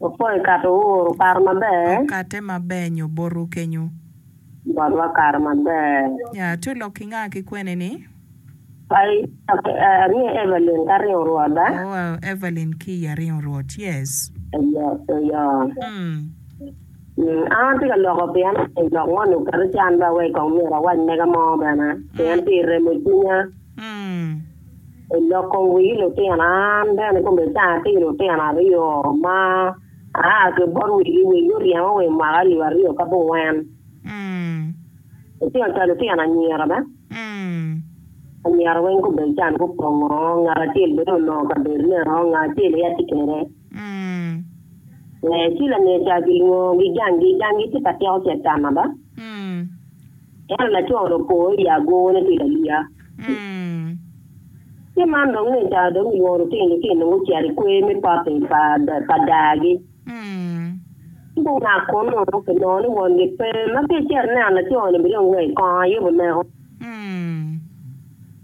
Opwoyo kato ouru kare maber. Okatte maber nyo botu kenyo. Botwa kare maber. Ya to lok ki nga ki kwene ni. Ai aringo Evelyn ka ringo rwot ba. Oh Evelyn ki i aringo rwot yes. Eyo Eyo. An atye ka loko pien omyero lok moni oket ican ba wek kong myero awac mega mo bene pien pi remo cwinya. Oloko wi lutina, an bene kome ca atye lutino aryo ma aa ki bot wegi, wegi guryema wa i mwaka alip aryo ki abongwen. Lutino ca lutino anyira be, anyira weng kome can gupongo, ngat acel bene oloko kabedo nino, ngat acel aye atye kwede. Ci lane ca kilwongogi janggi, janggi tye ka tyeko Catan ada. Ento laco dong opo i agone tye ka liya. Ci man dong ngecca dong gilwongo lutino-ni ci nongo gucito i kwer me pote pa daa-gi. Ci gungat kunnu kinongo ni wongi pe, ma ki icito ineno laco-ni bene dong wek i kong aye wuneko.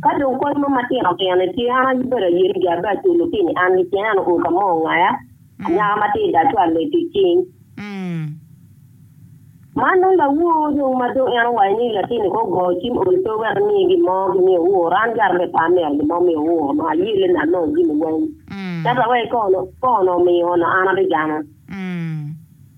Ka dong kony mo matino tino ni tye, an abedo ayeni jo abe aculo pi ni an kicen, an our ka mo ongaya, anyaka ma tye i da twal lec ki cing. Man dong lawor dong ma dong en owaco ni latin ni ko go cim ol pe wek imiye gin mo ki miyo our, an gar be pe amito gin mo miyo our onongo ayelle ni anongo jimi weng. Ento wek iko onongo omiyo onongo an abigamo.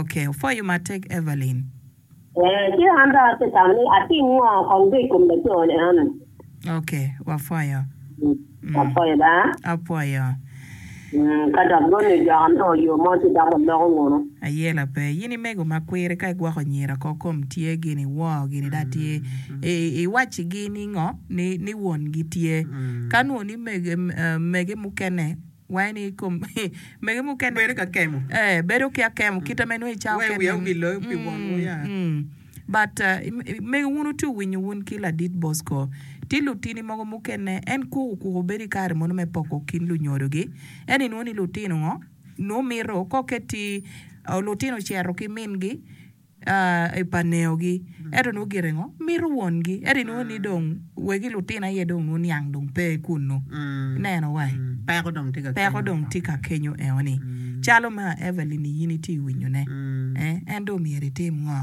Ok, opwoyo matek Evelyn. Ee, ci an dong atye tamo ni atim ngo kong dong i kom laco ni eno. Ok, wapwoyo. Apwoyo da. Apwoyo. Ka dok dong ni dok anongo yo mo ci dok waloko ngunu. Aye la pe. Yin i mego ma kwiri ka i gwoko nyira ko kom tye gin i woo gini da tye i i waci gi ni ngo ni ni won gi tye ka nwo ni mege mege mukene Wee ni i kom mege mukene. Bedo ki akemo. Ee, bedo ki akemo kite ma inongo icayo kenni. Wee wiya obi loyo pi wonwu ya. But, mege wun wutye winyo wun ki Ladit Bosco, tye lutini mogo mukene en koko okuko bedo i kare mono me poko kin lunyodogi. Ento inwongo ni lutino ngo nongo mito kok eti lutino cito ki mingi. i paneogi, ento nongo gire ngo? Mito wongi. Ento inongo ni dong wegi lutino aye dong nongo niang dong pe kunnu. Ineno wa i? Peko dong tye ka kenyo. Peko dong tye ka kenyo eo ni. Calo ma Evelyn-ni in itye ka winyone, eh, en dong myero itim ngo?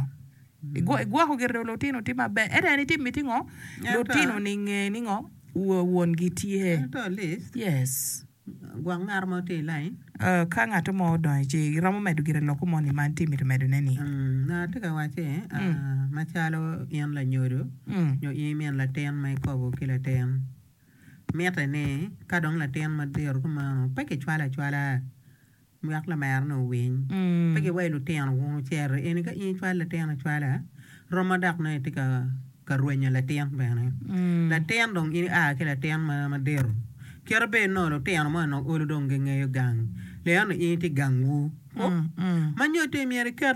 Igwoko gire dong lutino tye maber. Ento en itimo iti ngo? Lutino-ni nge ni ngo? Wongi tye. Ento at least. Yes. Gwok ngat mo tye i lain. Ka ngat mo odonyo ici, iromo medo gire lokko moni ma itye mito medone ni? Ngat atye ka wacce macalo in lanyodo nyo in imin latin ma ikobo ki latin, mitte ni ka dong latin madito kumeno pe kicwale acwala. Lwak lameroni owiny. Pe giwayi lutino wunu cere eni ka in icwalo latin acwala, romo dok nongo itye ka rwenyo latin bene. Latin dong in ia ki latin madito. Kite bed nongo lutino moni nongo olo dong gingeyo gang, leno ni in itye gangwu. Manyotte myero iket.